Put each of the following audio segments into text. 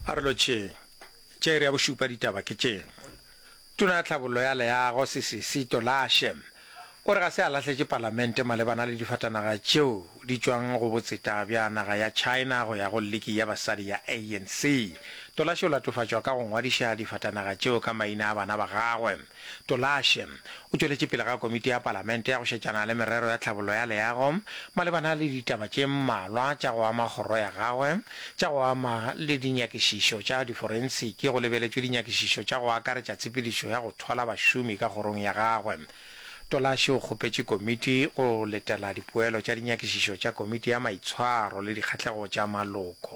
A re lotšheng, tše iri ya bošupa ditaba ke tše. Tona ya Tlhabollo ya Leago Sisisi Tolashe o re ga se a lahletše palamente malebana le difatanaga tšeo di tšwang go botseta bja naga ya China go ya go liki ya basadi ya ANC. Tolashe o latofatšwa ka go ngwadiša difatanaga tšeo ka maina a bana ba gagwe. Tolashe o tšweletše pele ga Komiti ya Palamente ya go Šetšana le Merero ya Tlhabollo ya Leago malebana le ditaba tše mmalwa tša go ama kgoro ya gagwe tša go ama le dinyakišišo tša diforensiki go lebeletšwe dinyakišišo tša go akaretša tshepedišo ya go thola bašomi ka kgorong ya gagwe. Tolashe o kgopetše Komiti go letela dipoelo tša dinyakišišo tša Komiti ya Maitshwaro le Dikgahlego tša Maloko.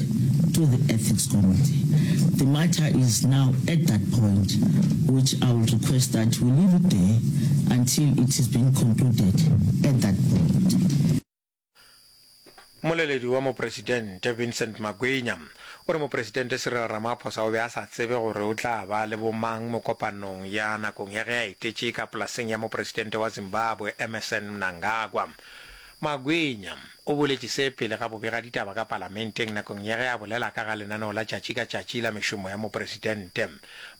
to the ethics committee. The matter is now at that point which I will request that we leave it there until it is being concluded at that point. Mmoleledi wa Mopresidente, Vincent Magwinya, o re Mopresidente Cyril Ramaphosa o be a sa tsebe gore o tla ba le bomang mo kopanong ya nakong ya ge a etetše ka polaseng ya Mopresidente wa Zimbabwe, Emmerson Mnangagwa. Magwenya o boletše se pele ga bobegaditaba ka Palamenteng nakong ya ge a bolela ka ga lenaneo la tšatši ka tšatši la mešomo ya Mopresidente.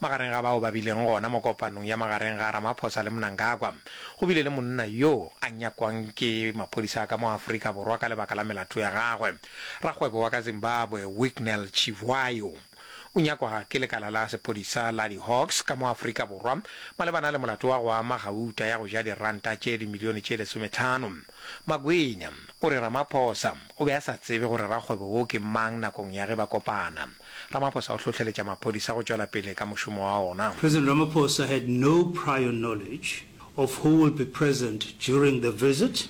Magareng ga bao ba bileng gona mo kopanong ya magareng ga Ramaphosa le Mnangagwa, go bile le monna yo a nyakwang ke maphodisa a ka mo Afrika Borwa ka lebaka la melato ya gagwe, rakgwebo wa ka Zimbabwe Wicknell Chivhayo. O nyakwa ke lekala la sephodisa la di-Hawks ka mo Afrika Borwa malebana le molato wa go ama gauta ya go ja diranta tše dimilione tše lesometlhano. Makwenya o re Ramaphosa o be a sa tsebe gore rakgwebo wo ke mang nakong ya ge ba kopana. Ramaphosa o hlohleletša maphodisa go tšwela pele ka mošomo wa ona. President Ramaphosa had no prior knowledge of who will be present during the visit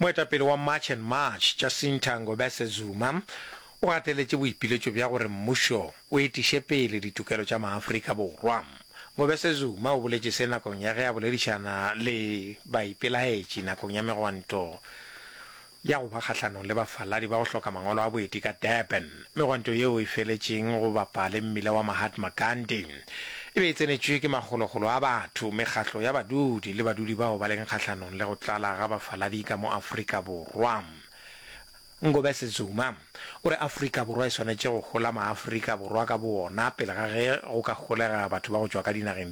Moetapele wa March and March, Jacinta Ngobese Zuma, o gateletše boipiletšo bja gore mmušo o etiše pele ditokelo tša maAfrika Borwa. Ngobese Zuma o boletše se nakong ya ge a boledišana le baipelaetši nakong ya megwanto ya go ba kgahlanong le bafaladi ba go hloka mangwalo a boeti ka Durban. Megwanto yeo e feletšeng go bapa le mmila wa Mahatma Gandhi e be e tsenetšwe ke makgolokgolo a batho, mekgatlo ya badudi le badudi bao ba leng kgahlanong le go tlala ga bafaladi ka mo Afrika Borwa. Ngobese Zuma o re Afrika Borwa e swanetše go hola Maafrika Borwa ka bowona pele ga ge go ka holega batho ba go tšwa ka dinageng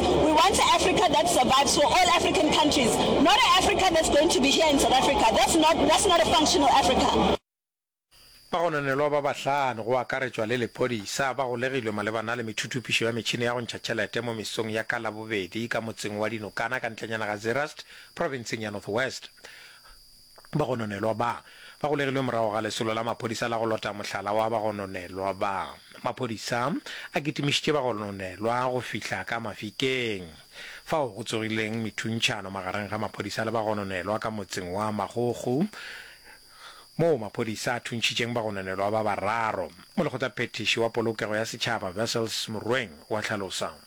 We want a Africa that survives for all African countries, not a Africa that's going to be here in South Africa. That's not, that's not a functional Africa. Bagononelwa ba bahlano, go akaretšwa le lephodisa, ba golegilwe malebana le methuthupišo ya metšhini ya go ntšha tšhelete mo mesong ya ka Labobedi ka motseng wa Dinokana ka ntlenyana ga Zeerust, profenseng ya North West. Bagononelwa ba ba golegilwe morago ga lesolo la maphodisa la go lota mohlala wa bagononelwa ba. Maphodisa a kitimišitše bagononelwa go fihla ka Mafikeng, fao go tsogileng methuntšhano magareng ga maphodisa le bagononelwa ka motseng wa Magogo, moo maphodisa a thuntšhitšeng bagononelwa ba bararo. Molekgothaphethiši wa Polokego ya Setšhaba Wessels Morweng o a hlalosa.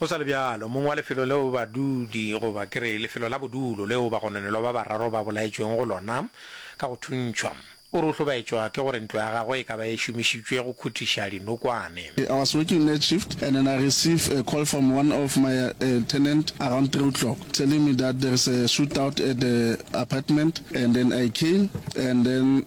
Go sa le bjalo, mong wa lefelo leo badudi, goba ke re, lefelo la bodulo leo bagononelwa ba bararo ba bolaetšwego go lona ka go thuntšhwa, o re o hlobaetšwa ke gore ntlo ya gagwe e ka ba e šomišitšwe go khuthiša dinokwane. I was working night shift and then I receive a call from one of my tenant around three o'clock telling me that there is a shootout at the apartment and then I came and then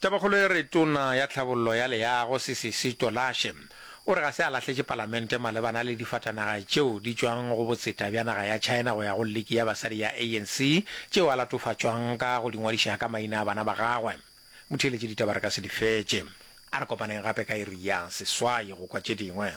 Tabakgolo e re Tona ya Tlhabollo ya Leago Sisisi Tolashe o re ga se a lahletše palamente malebana le difatanaga tšeo di tšwang go botseta bja naga ya China go ya go liki ya basadi ya ANC tšeo a latofatšwang ka go di ngwadiša ka maina a bana ba gagwe. Motheeletši ditaba re ka se di fetše. A re kopaneng gape ka iri ya seswai go kwa tše dingwe.